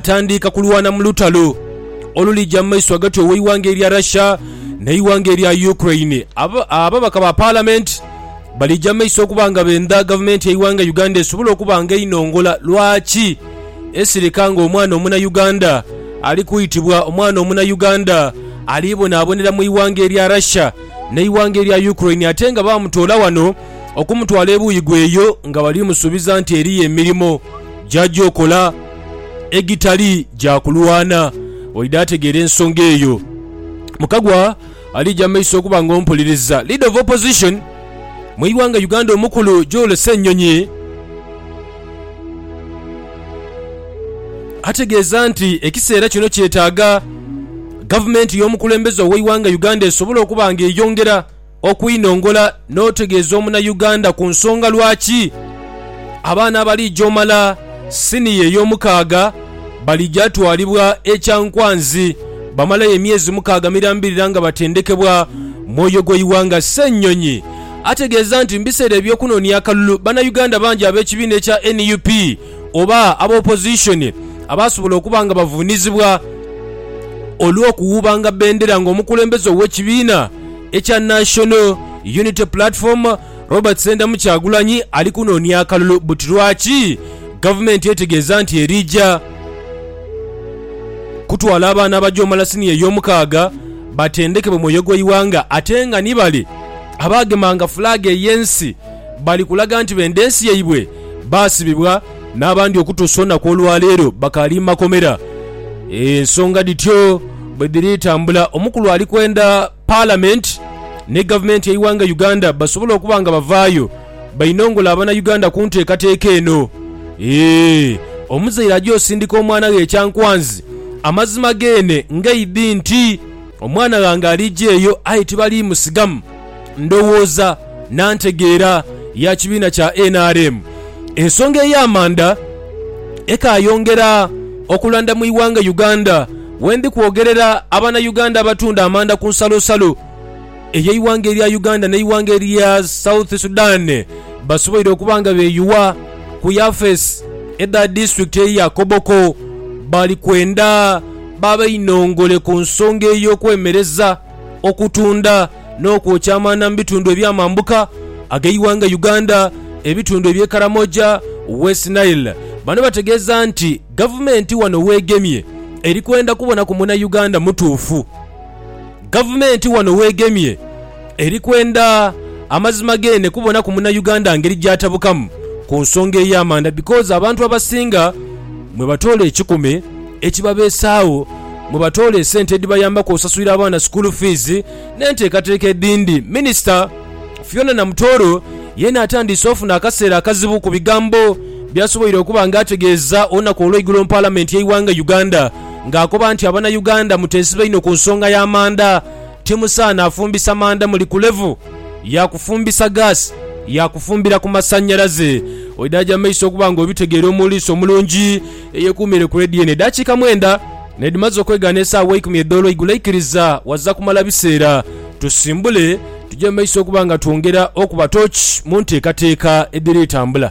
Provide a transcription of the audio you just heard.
Tandiika kulwana mu lutalo olulija mu maiso ghagati ow'eighanga erya Russia n'eighanga erya Ukraine. Ababaka ba Palamenti balija mu maiso okuba nga benda gavumenti y'eighanga Uganda esobole okuba nga einongola lwaki esirika nga omwana Omunayuganda ali kwitibwa omwana Omunayuganda ali bonabonera mu ighanga erya Russia n'eighanga erya Ukraine ate nga bamutoola wano okumutwala ebuuyi gheyo nga bali musuubiza nti eriyo emirimo gyaja okola. egitali gya kulwana. Oidha ategeera ensonga eyo. Mukagwa alija mu maiso okuba nga ompuliriza. Leader of Opposition mu ighanga Uganda omukulu Joel Ssenyonyi ategeeza nti ekiseera kino kyetaaga gavumenti y'omukulembeze ow'eighanga Uganda esobole okuba nga eyongera Okwinongola n'otegeeza omunayuganda ku nsonga lwaki abaana abaliija omala siniya ey'omukaaga baliija twalibwa e Kyankwanzi bamalayo emyezi mukaaga mirambirira nga batendekebwa Mwoyo gw'eighanga Ssenyonyi ategeeza nti mubiseera eby'okunonia akalulu banayuganda bangi ab'ekibiina ekya nup oba aba opposition abaasobola okuba nga bavuunizibwa olw'okuwuubanga bendera ng'omukulembeze ow'ekibiina ekya National Unity Platform, Robert Sendamu Kyagulanyi ali kunoonia akalulu buti lwaki gavumenti etegeeza nti erija kutwala abaana abajoomala siniya eyomukaaga batendekebwe mwoyo gweighanga ate nga ni bale abaagemanga fulaaga eyensi bali kulaga nti benda ensi yaibwe baasibibwa n'abandi okutuusa olunaku olwa leero bakaali mu makomera. Ensonga dhityo bwe dhiri tambula, omukulu ali kwenda Palamenti ni Gavumenti y'eighanga Uganda basobole okuba nga bavaayo bainongole Abanauganda ku nteekateeka eno. Eeh! Omuzaire aja osindika omwana ghe ekyankwanzi, amazima geene ng'eidhi nti. Omwana ghange aliija eyo, aye tibaliimusigamu. Ndowooza na ntegeera ya kibiina kya nrm. Ensonga ey'amanda ekaayongera okulanda mu ighanga Uganda. Wendi kwogerera abanauganda abatunda amanda ku nsalosalo ey'eighanga erya Uganda n'eighanga erya South Sudan basoboire okuba nga beeyuwa ku yafeesi edha disitulikiti eye ya Koboko bali kwenda babe inongole ku nsonga ey'okwemereza okutunda n'okwokya amaanda mu bitundu eby'amambuka ag'eighanga Uganda ebitundu eby'e Karamoja, West Nile. Bano bategeeza nti gavumenti wano w'egemye eri kwenda kubona ku Munayuganda mutuufu. Gavumenti wano weegemye eri kwenda amazima geene kubonaku Munauganda ngeri gy'atabukamu ku nsonga ey'amanda because abantu abasinga mwe batoola ekikumi ekibabeesaagho, mwe batoola esente edhibayambaku osasulira abaana school fees n'enteekateeka edhindi. Minisita Fiona Namutoro yeena atandiise ofuna akaseera akazibu ku bigambo by'asoboire okuba nga ategeeza olunaku olw'eigulo mu Palamenti y'eighanga Uganda. ng'akoba nti Abanauganda muteesibe inho ku nsonga ya manda, timusaana afumbisa manda muli ku levu ya kufumbisa gaasi ya kufumbira ku masannyalaze. Oidaaja mu maiso okuba ng'obitegeera omuliisi omulungi eyekuumiire ku leediyo eno. Edaakiika mwenda n'edhimaze okwegaana esaawa eikumi edh'olwa igulo aikiriza waza kumala biseera tusimbule tuje mu maiso okuba nga twongera okuba tooki mu nteekateeka edhiri tambula.